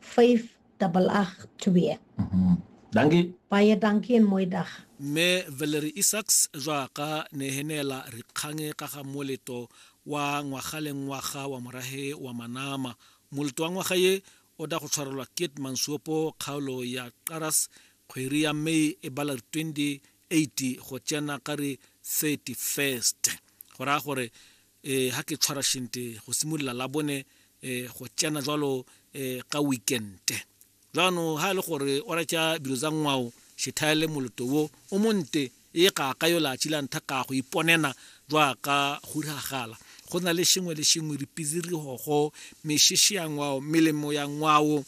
5 double 8 2 Dankie. baie dankie en mooi dag mme valery isaks jaaka ne he neela rikgange ka ga moleto wa ngwaga le ngwaga wa morage wa manama moleto wa ngwaga ye o da go tshwarelwa kit mansuopo kgaolo ya qaras kgweri ya may e bala re 28 go tsena ka re 31st go raya gore eh ha ke tshwara shente go simolola la bone eh go tsena jwalo eh ka weekente jaanong ha e le gore o recha dilo tsa ngwao shethaele moloto wo o monte e ga ka yo latši la ntha ka go iponena jwa ka go diragala go na le sengwe le sengwe dipizirigogo mešešo ya ngwao melemo ya ngwao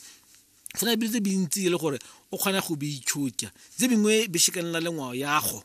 go na dilo tse bintsi e le gore o kgona go beitšhotša tse bingwe be sekanela le ngwao yago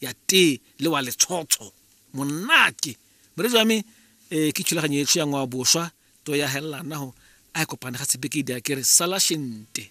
ya tee le wa letshotsho monate moredi wa me um ke thulaganyo etsho ya ngwao boswa to ya helelanago a e kopane ga sebeke di a kere sala shente